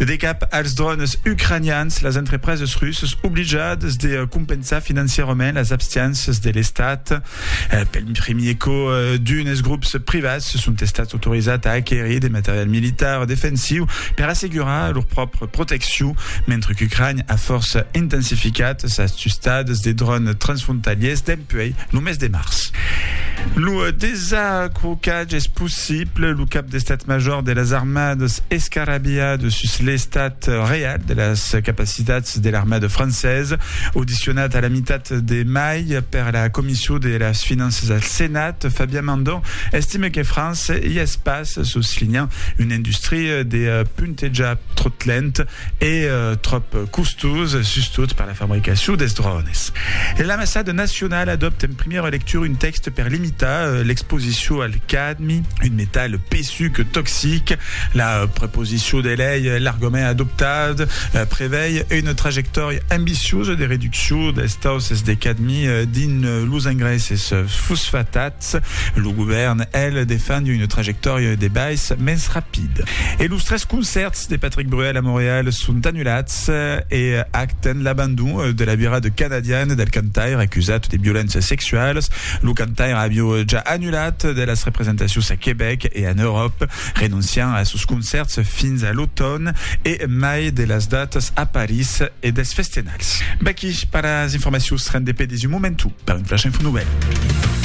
De cap als drònes ucranians, las entrepreses russas oblijadas de compensar financièrament las abstiénças de l'Estat. Pel primier cò, d'unes grops privats son estats autorizats a aquerir de material militar defensiu per assegurar lor pròpria proteccion, mentre qu'Ucrània a fòrça intensificat sas tustadas de drònes transfrontaliers dempuèi lo mes de març. Lo desacrocatge es possible. Pleu lo cap d'Estat Major de las Armadas escarabilhada sus l'estat real de las capacitats de l'armada francesa. Audicionat a la mitat de mai per la Comission de las Finanças al Senat, Fabien Mandon estime que França i es pas, soslinhant una industria de puntejar tròt lent e tròp costós, sustot per la fabricacion dels drònes. L'Ambassada nacionala adòpta en primièra lectura un tèxte per limitar l'exposicion al cas Un metal pesuc toxic. La proposicion de lei e l'argument adoptat prevei una trajectòria ambiciosa de reduccion dels tausses de cadmi dins los engraisses fosfatats. Lo govèrn, el, defend una trajectòria de bais mens rapida. E los tres concèrts de Patrick Bruel a Montreal son anulats e acten l'abandon de la virada canadiana del cantaire acusat de violéncias sexualas Lo cantaire avió ja annulat de las representacions a Quebec e en Euròp, renonciant a sos concèrts fins a l'automn e mai de las datas a París e dels festenals. Vaqui per las informacions rendepedis un momentu per un flash info novèl.